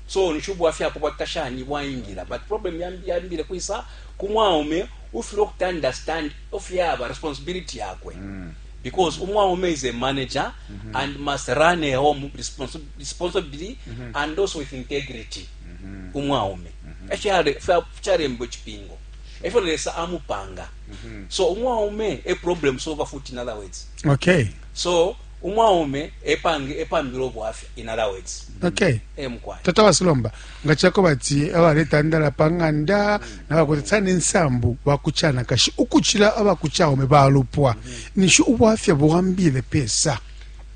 So ninshi ubwafya ako bwakita shani bwaingila but problem yambi yambile kwisa ku mwaume ufile ukuti understand of yaba responsibility yakwe mm. because umwaume is a manager mm -hmm. and must run a home responsi responsibly mm -hmm. and also with integrity mm -hmm. umwaume mm -hmm. fyarembo chipingo sure. efyo lesa amupanga mm -hmm. so umwaume a problem solver futi in other words okay so umwaume epange epambila ubwafya in other words okay e mukwai tata wasilomba nga chako bati abaletandala pa ng'anda mm. nabakwete tsana ensambu bakuchana kashi ukuchila abakuchaume balupwa mm. nishi ubwafya buwambile pesa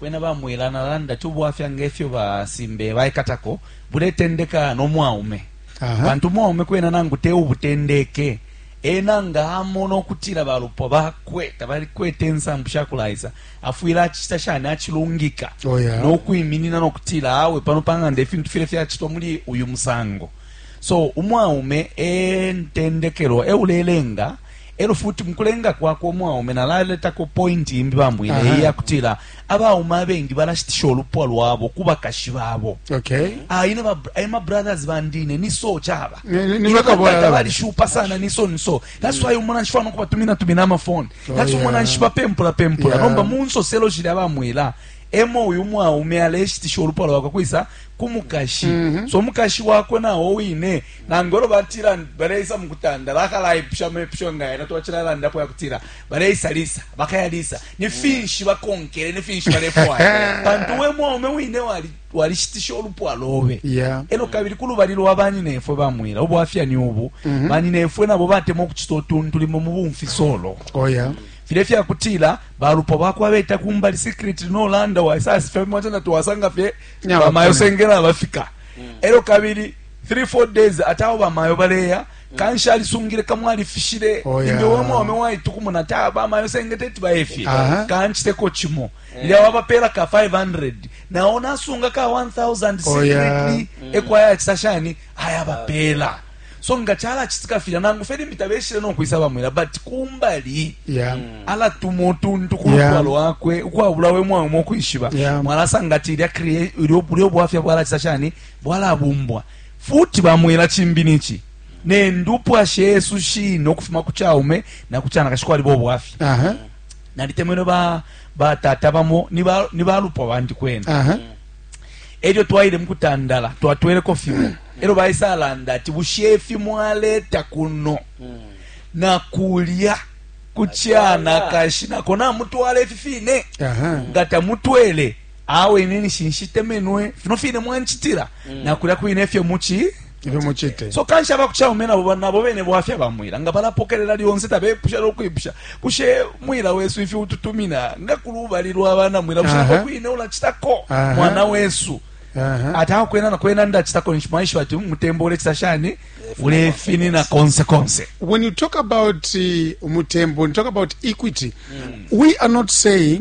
bwena bamwela nalanda ti ubwafya ngefyo basimbe baikatako buletendeka nomwaume bantu umwaume kwena nangu te ubutendeke ena nga amona okutila balupwa bakwe tabalikwete ensambu shakulaisa afwile acita shani acilungika oh, yeah. nokwiminina nokutila awe pano pang'anda ifintu file fyacitwa muli uyu musango so umwaume entendekelwa eulelenga elo futi mukulenga kwakwe umwaume nalaletako pointi imbi bambwine uh -huh. iyakutila abaume abengi balashitisha olupwa lwabo kubakashi babo okay. ah, ine ma, brothers bandine niso chaba tabalishupa sana niso niso That's why umona nshifana kuba tumina tumina ama phone. Oh, That's oh, yeah. umona nshiba pempula pempula. Yeah. Nomba munso selo jile aba mwela. Emo uyu mwaume aleshitisha olupa lwakwe kwisa kumukashi. Mm -hmm. So mukashi wakwe na owine nangoro batira baleisa mukutanda bakala ipsha mepsho ngaye na twachira landa po yakutira. Baleisa lisa, bakaya lisa. Ni finshi bakonkere, ni finshi balefwa. Pantu we mwaume wine wali twalishitisha ulupwa lobe yeah. elo kabili kulubali lwa banyinefwe bamwila ubwafya ni ubu mm -hmm. banyinefwe nabo batema okucita otuntu limo mu bumfisolo oh, yeah. file fyakutila balupwa bakwa beta kumbali secret nolanda waisasifemwatena twasanga fye bamayo sengela bafika mm. elo kabili 3 4 days ate awo bamayo baleya kanshi alisungile kamwali fishile oh, yeah. imbe wamwaume waitukumuna ta bamayo sengete tibayefye uh -huh. kanchiteko chimo lya wabapela ka 500 nawo nasunga ka 1000 secretly ekwayacisa shani ayabapela so nga calacitika filya nangu fye limbi tabeshile nokwisa bamwela but kumbali yeah. alatuma utuntu ku lupwa yeah. lwakwe ukwabula we mwawe mokwishiba yeah. mwalasanga ati ilyo bwafya bwalacisa shani bwalabumbwa futi bamwela cimbi nici nendupwa shesu shine ukufuma ku caume na ku canakashi kwaliba obwafya uh -huh. nalitemenwe ba batata bamo ni ba ni balupwa bandi kwena uh -huh. elyo twaile mukutandala twatweleko fimo mm. elyo baisa alanda ati bushe ifi mwaleta kuno mm. nakulya kuchana kashi nako namutwala ifi fine uh -huh. nga tamutwele awe ine nishinshitemenwe fino fine mwanchitila mm. nakulya kwine ifyo muchi ifyo mucite so kanshi abakucaume nabo nabo bene bwafya bamwila nga balapokelela lyonse tabepusha nokwipusha kushe mwila wesu ifi ututumina nga kulubali lwa bana mwila bushe kwine ulacitako mwana wesu ati aho kwena na kwena ndacitako nshi mwaishiba ati umutembo ulecita shani ulefinina konse konse when you talk about uh, umutembo when you talk about equity mm. we are not saying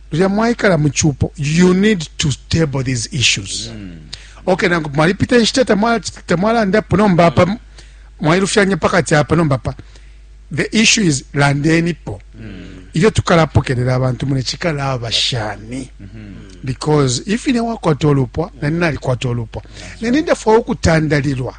lilya mwaikala mu cupo you need to table these issues mm. okay nangu mwalipita inshita tamwalandapo nomba apa mm. mwailufyanya pakati apa nomba pa the issue is landenipo mm. ilyo tukalapokelela abantu mune cikalaba shani mm -hmm. because if ine wakwata olupwa mm. nani nalikwata olupwa mm. nani ndafwa ukutandalilwa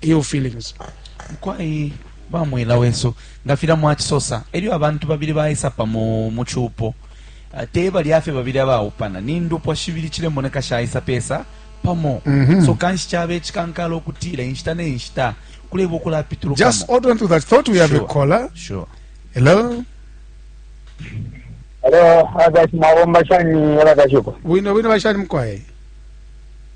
ill feelings. Mukwai ba mwila wesu nga filya mwacisosa elyo abantu babili baisa pamo mu cupo ah, te balya fye babili abaupana ni ndupwa shibili cilemoneka shaisa pesa pamo mm -hmm. so kanshi cabe cikankala ukutila inshita ne nshita kuleba ukulapitulukamo just hold on to that thought we have sure. a caller sure hello hello abati mabomba shani yala kashuko wino wino bashani mkwaye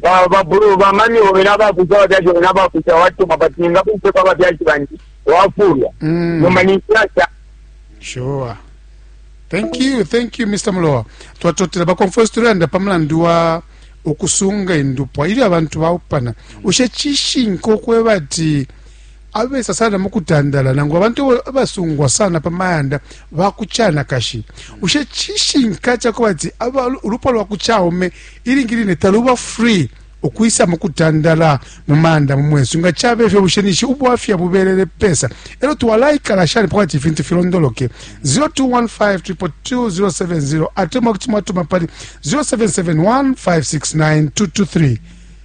Ba Babulo, ba mami obe na bakusa abafyashi obe na bakusa watuma but ningakupe kwa bafyashi bandi wafulwa Mm. nomba ninsiasa sure thank you thank you mr mulowa twatotela bakonferensi tulanda pa mulandu wa ukusunga indupwa ili abantu baupana ushe cishinka ukweba ati abesa sana mu kutandala nangu abantu abasungwa sana pa mayanda ba ku canakashi bushe cishinka ca kuba ati ulupwa lwa ku caume ilingi line taluba free ukwisa mu kutandala mu mayanda mu mwesu nga cabe fyo bushe nishi ubwafya bubelele pesa elo twalaikala shani pa kwati ifintu filondoloke 0215222070 ate mwakuti mwatuma pali 0771569223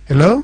hello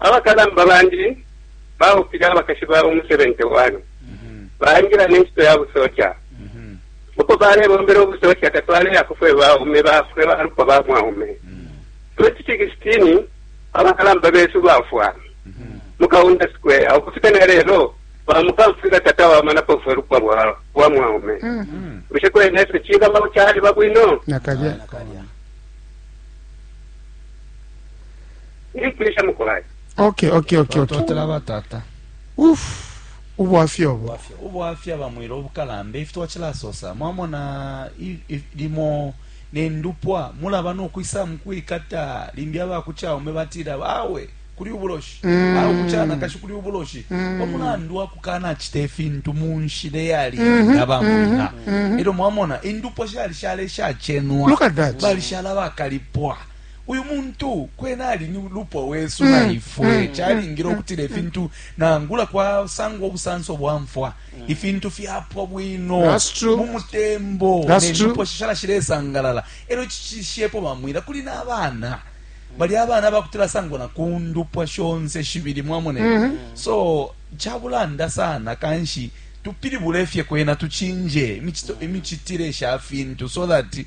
Abakalamba bandi baupile abakashi babo mu 71, baingila ne ncito ya busoja. Uko balebombela ubusoja tatwaleyako fwe baume ba fwe balupwa ba mwaume. 2016, abakalamba besu bafwa mu Kaunda Square. Ukufika ne lelo, bamukamfwila tatawamanapo fwe lupwa lwa mwaume. Bushe kwena ifyo cingaba caliba bwino? Nakalya. Ili kulisha mukolai. Okay, okay, okay, okay. Totela ba tata. Uf. Ubwafya obo. Ubwafya. Ubwafya bamwira obukalambe ifitwa kilasosa. Mwamona limo nendupwa mulaba nokwisa mukwikata limbi abakuchaume batira bawe kuli ubuloshi mm. au kuchana kashi kuli ubuloshi mm. omulandu wakukana chita ifintu munshile yali mm-hmm. yabamwina mm -hmm. ero mwamona indupwa shali shale shachenwa balishala bakalipwa uyu muntu kwena ali ni lupwa wesu mm. na ifwe mm. calingile mm. ukutila ifintu nangula kwasangwa obusanso bwa mfwa ifintu fyapwa bwino mu mutembo nendupo shishala shilesangalala elyo cishishepo bamwila kuli n'abaana bali abaana bakutila sangwa na ku ndupwa shonse shibili mwamone mm-hmm. so cabulanda sana kanshi tupilibule fye kwena tucinje imicitile sha fintu so that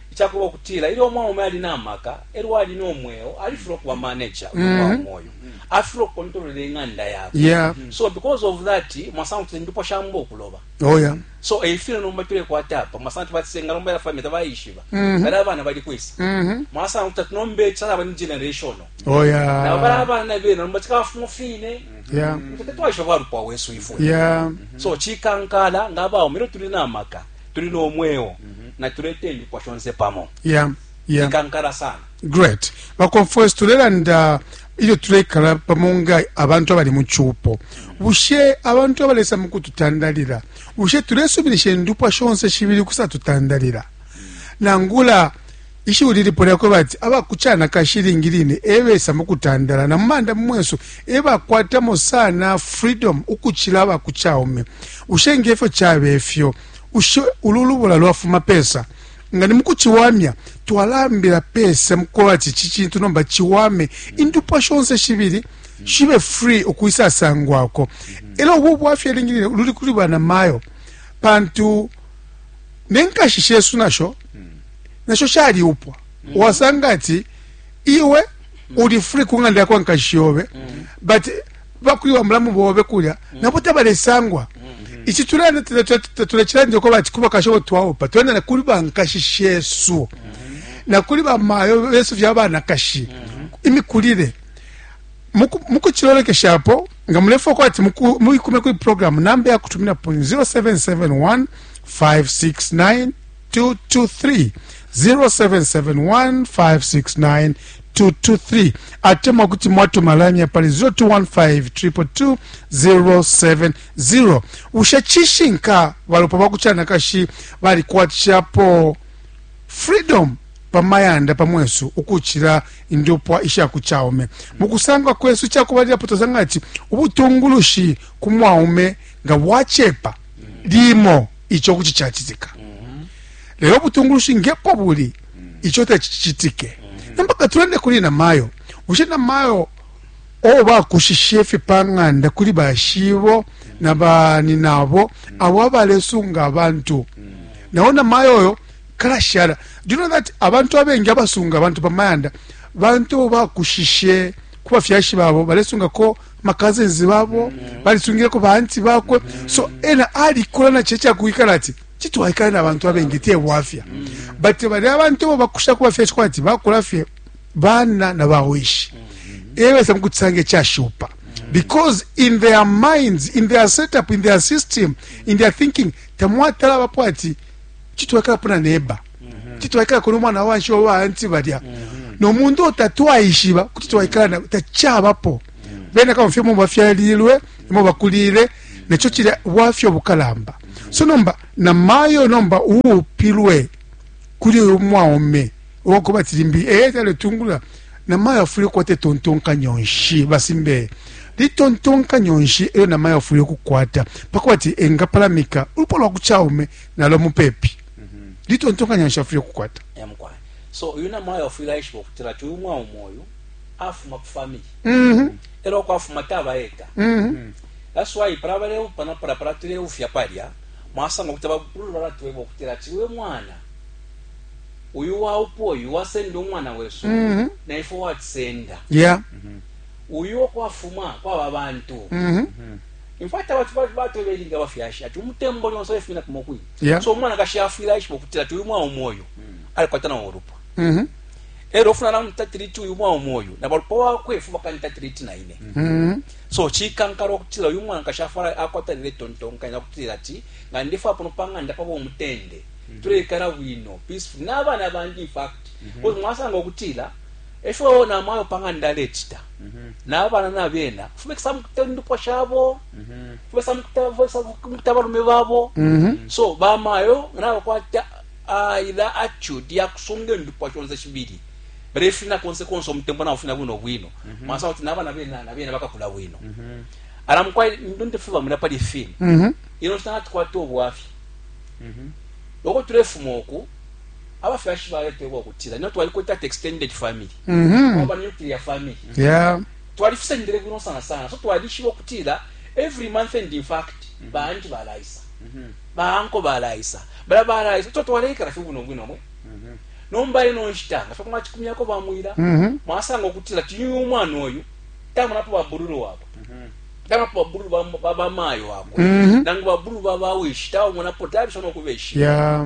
Icakuba ukutila ilyo umwaume ali na maka elyo ali no mweo, alifilwa ukuba manager uyu mwaume mm-hmm. uyu. Afilwa ukukontolola ing'anda yakwe. Yeah. So because of that, mwasanga kuti indupwa shamba ukuloba. Oh yeah. So efile nomba tulekwata apa mwasanga kuti batisenga nomba yafamita bayishiba. Mm-hmm. Bali abana bali kwisa. Mm-hmm. Mwasanga kuti tunombe chala bani generational. Oh yeah. Na bali abana bena nomba tikafumu fine. Yeah. Kuti twashoba lupwa wesu ifwe. Yeah. So chikankala ngaba umiro tuli na maka. tuli no mweo natulete indupwa shonse pamo yeah, yeah. ikankala sana great baconfrance tulelanda ilyo tulekala pamo nga abantu abali mu cupo bushe abantu abalesa mu kututandalila bushe tulesuminisha indupwa shonse shibili kusatutandalila nangula Ishiwi lilipo lya kweba ati aba ku canakashi ilingi line e besa mu kutandala, na mu manda mu mwesu e bakwatamo sana freedom ukucila aba ku caume. Bushe nge fyo cabe fyo, ushe ulu lubula lwafuma pesa? Nga ni mu kuciwamya, twalambila pesa mu kweba ati ici cintu nomba ciwame, indupwa shonse shibili shibe free ukwisasangwako. E lyo ubu bwafya ilingi line luli kuli banamayo, pantu ne nkashi shesu na sho nasho shaliupwa mm. wasanga ati iwe mm. uli free ku ng'anda yakwa nkashi yobe mm. but bakwiwa mulamu bobe kulya mm. nabo tabalesangwa mm. ici tulenda tulacilandi uko bati kuba kashobo twaupa twenda na kuli bankashi shesu na kuli bamayo besu vya banakashi imikulire mukucilolekeshapo nga mulefa uko ati muikume kuli programu namba yakutuminapo 0771 569 223 0771569223 atemwa kuti mwatuma line ya pali 0215222070 bushe cishinka balopa ba kucanakashi balikwatishapo freedom pamayanda pamwesu ukucila indupwa isha ku caume mu kusangwa kwesu cakubalilapo tosanga ati ubutungulushi ku mwaume nga bwacepa limo ico kuti cacitika lelo ubutungulushi ngepo buli ico tacicitike nomba katulande kuli namayo bushe namayo o bakushishe ifi pa ng'anda kuli bashibo na baninabo abo abalesunga abantu nawo namayo oyo kalashala do you know that abantu abengi abasunga abantu pamayanda bantu bakushishe kubafyashi babo balesungako ma cousins babo balisungileko ba anti bakwe so ena alikola na checha kuikala ati chitwaikala na bantu abengi te bwafya but bali abantu bo bakusha kuba fye chikwa ati bakula fye bana na bawishi ewe sa mkutsange cha shupa because in their minds in their setup in their system in their thinking tamwatala bapo ati chitwaikala puna neba kuti twaikala kona umwana wanshi wa baanti balya nomuntu otatwaishiba kuti twaikala na tachabapo bena kama fye mumba fyalilwe imo bakulile necho chile wafyo bukalamba so nomba na mayo nomba uupilwe kuli uyu mwaume wako batilimbi eh tale tungula na mayo afuli kwate tontonka nyonshi basimbe litontonka nyonshi eyo na mayo afuli kukwata pakwati engapalamika ulupo lwa kuchaume nalo mupepi mhm. litontonkanya nshi afwile kukwata so uyu namayo afwile aishiba ukutila ti uyu mwaume uyu afuma ku family mhm. elo kwafuma taba eka mhm. that's why para baleupana para para tuleufya palya mwasanga kuti abakulu balatweba okutira ati we mwana uyu waupa oyu wasenda omwana wesu mm -hmm. naife watisenda yeah. mm -hmm. uyu okwafuma kwaba bantu mm -hmm. infact abantu batweberinga bafyashi ati umutembo lyonse lefumina kumokwini yeah. so umwanakashi afwile aishiba ukutila ti uyu mwaume uyu alikwata nawo ulupwa mm -hmm. ero ofuna namutatiriti uyu mwaume uyu na balupwa wakwe efu bakanitatiriti na ine mm -hmm. so chikankala okutila uyu mwanakashi afwala akwatanira etontonkanya okutira ati nga ndifa pano pang'anda paba omutende mm -hmm. tuleikara bwino peaceful n'abana bandi infact mm -hmm. mwasanga okutira E fyo na mayo pa ng'anda alecita na bana na bena fubekisa mukuta indupwa shabo fubesa mukuta abalume babo so bamayo nabakwata ila attitude ya kusunga indupwa shonse shibili balefina konse konse umutembo nabo fina bwino bwino masa kuti na bana bena na bena bakakula bwino ala mukwai ndonde fwe bamwina pali fini ino nshita natukwata obwafya loko tulefuma oku abafyashi baletebwa ukutila nina twalikwete ati extended family mm -hmm. waba nuclear family yeah. twalifisendele bwino sana sana so twalishiba ukutila every month and in fact mm -hmm. baanti balaisa mm -hmm. baanko balaisa bala balaisa so twaleikala fye bwino bwino mwe mm -hmm. nomba ino nshita nga fye kumachikumyako bamwila mm -hmm. mwasanga ukutila tiyu umwana oyu tamunapo babululu wabo mm -hmm taba pa bulu ba ba mayo ako mm -hmm. nangu ba bulu ba ba wish tawo mona potari sono kubeshi yeah.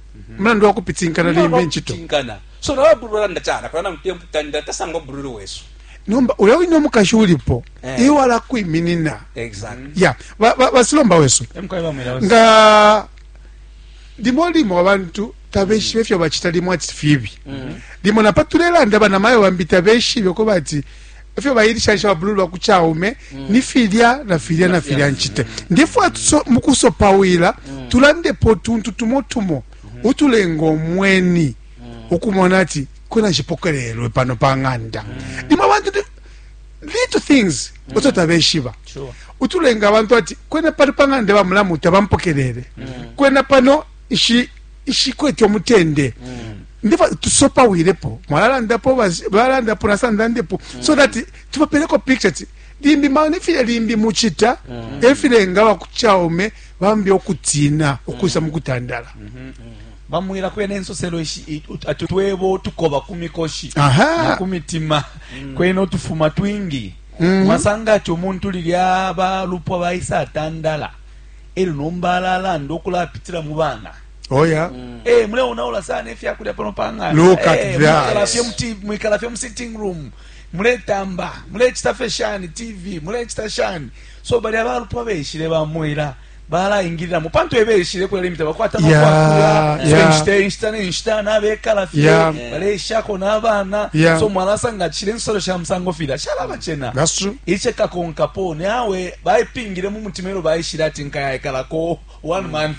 mulandu wa kupitinkana limbi incito so nawe bulu olanda cana kola namutemputandira tasanga obululu wesu nomba ulya wine omukashi ulipo eh. iwe alakwiminina ya basilomba wesu nga limo limo abantu tabeshibe ifyo bacita limo ati fibi mm-hmm. limo napa tulelanda banamayo bambi tabeshibe ko bati efyo bailishanisha babulu lwa ku caume mm. ni filya na filya na filya ncite mm. ndifwa mu kusopawila mm. tulandepo tuntu tumo tumo mm-hmm. utulenga omweni ukumona ati kwena nshipokelelwe pano pa ng'anda ndimo abantu little things oto tabeshiba utulenga abantu ati kwena pano pa ng'anda bamulamu tabampokelele kwena pano ishi ishikwete umutende mm. ndiva tusopawilepo mwalalandapo balandapo nasandandepo mm. so that tubapeleko picture ti limbi maone file limbi muchita mm. efilenga bakuchaume bambi okutina okuisa mm. mukutandala mm -hmm. mm -hmm. bamwira kwene ensosero twebo tukoba ku mikoshi na ku mitima mm. kwene otufuma twingi mm -hmm. masanga ati omuntu lilya balupwa baisa atandala elyo nomba alalanda ukulapitila mu bana oya mm. hey, eh, muleonaula sana efyakulya pano pang'andakalafye eh, hey, mu sitting room muletamba mulecita fe shani tv mulecita shani so balya balupwa beshile bamwela balaingiliramo pantu ebeshile kula limita bakwata makwakula inshita inshita nenshita nabekala fye baleshako n'abana so mwalasanga kishile ensolo sha musango fila shalabachena iche kakonkapo nawe baipingile mu mutima elo baishile ati nkayaikalako one mm. month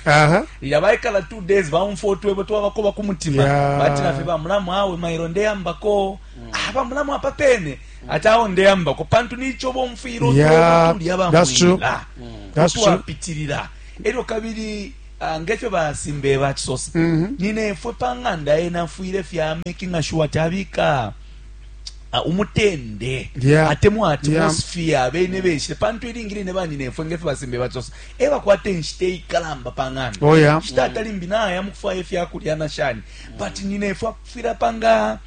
ilya baikala two days baumfwa utwebo twabakoba ku mutima bati nafe bamulamu awe mailo ndeyambako mm. ah, bamulamu apa pene mm. ati awo ndeyambako pantu nico bomfwile utwebotulya bamwila utwapitilila elyo kabili ah, ngefyo basimbe bacisosa mm-hmm. ninefwe pa ng'anda yena afwile fya making sure tabika uh, umutende yeah. atemwa atmosphere yeah. abene beshe pantu ilingi line banyinefwe ngefe basimbe batsosa e bakwata enshita eikalamba pa ng'anda oh, yeah. nshita atalimbi naya mukufwaya efyakulya na shani but nyinefwe akufwira panga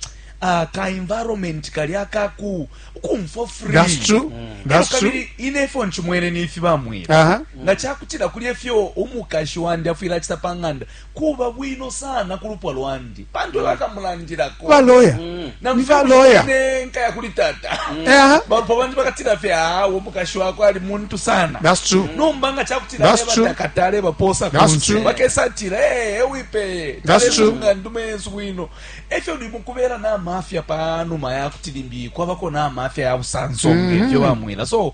uh, ka environment kali akaku kumfo free that's true mm. that's true kabili ine ifo nchimwene ni ifi bamwira uh -huh. nga chakutira kuli efyo umukashi wandi afwira chita panganda kuba bwino sana ku lupwa lwandi pantu bakamulandilako baloya mm. nibaloya nkaya kuli tata mm. eh? balupwa bandi bakatila fye awo mukashi wako ali muntu sana mm. nomba nga cakutilaebatakatale baposa kunse bakesatila ee eh, wipeye talelunga ndume yesu bwino efyo ndi mukubera namafya panuma yakuti limbi kwabako namafya ya busanso mm-hmm. ngefyo bamwila so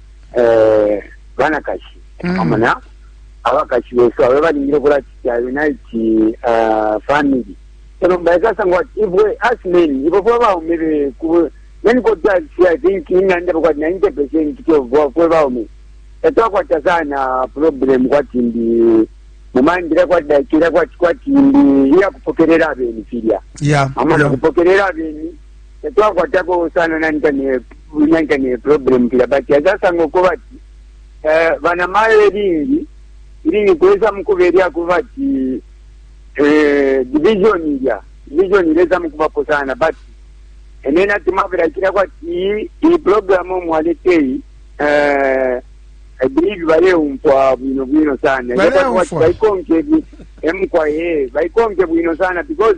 eh, banakashi mm. amona abakashi besu abe balingile okulacita unite uh, family elo mbaekasanga ati ibwe as men ibo fwe baume beku many cotas i think inganda bakwati ninety percent fwe baume tatwakwata sana problem kwati ndi mumandira kwati dakira kwati kwati ndi iyakupokerera abeni filya yeah, amana yeah. kupokerera abeni tatwakwatako sana nanta ne nanta ne problem kila but azasanga ko bati eh bana mayo lingi ili ni kweza mkuberia ko bati eh division ya division ile za mkubapo sana but enena tumavira kila kwa ti i program mwaletei eh I believe bale umfwa bwino bwino sana Bale Yaba kwa umfwa. baikonke bi- emkwa ye baikonke bwino sana because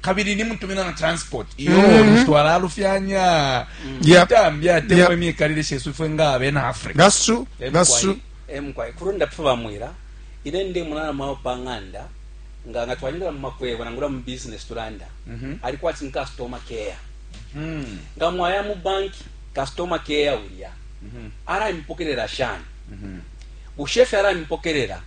kabili nimutumina na transport iyo mm-hmm. twalalufyanya itambi atemwa imikalile shesu ifwe nga abena africa that's true that's true emkwai kurunda pfu bamwira ine ndi munana mwawo pa ng'anda nga nga twanyira mu makwebo nangula mu business tulanda mm-hmm. alikuwa ati customer care mm-hmm. nga mwaya mu bank customer care ulya ara impokerera shani bushefe ara impokerera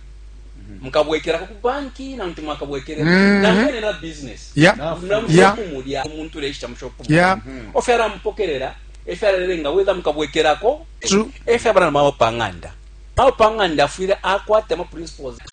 mukabwekelako ku banki nangu ti mwakabwekele mm-hmm. namwene na business mulamushopumulya omuntu ulechita mushopumulya mm-hmm. ofyo alamupokelela efyo alalenga wetha mukabwekelako efyo abana mawo pang'anda mawo pang'anda afwile akwata ama principles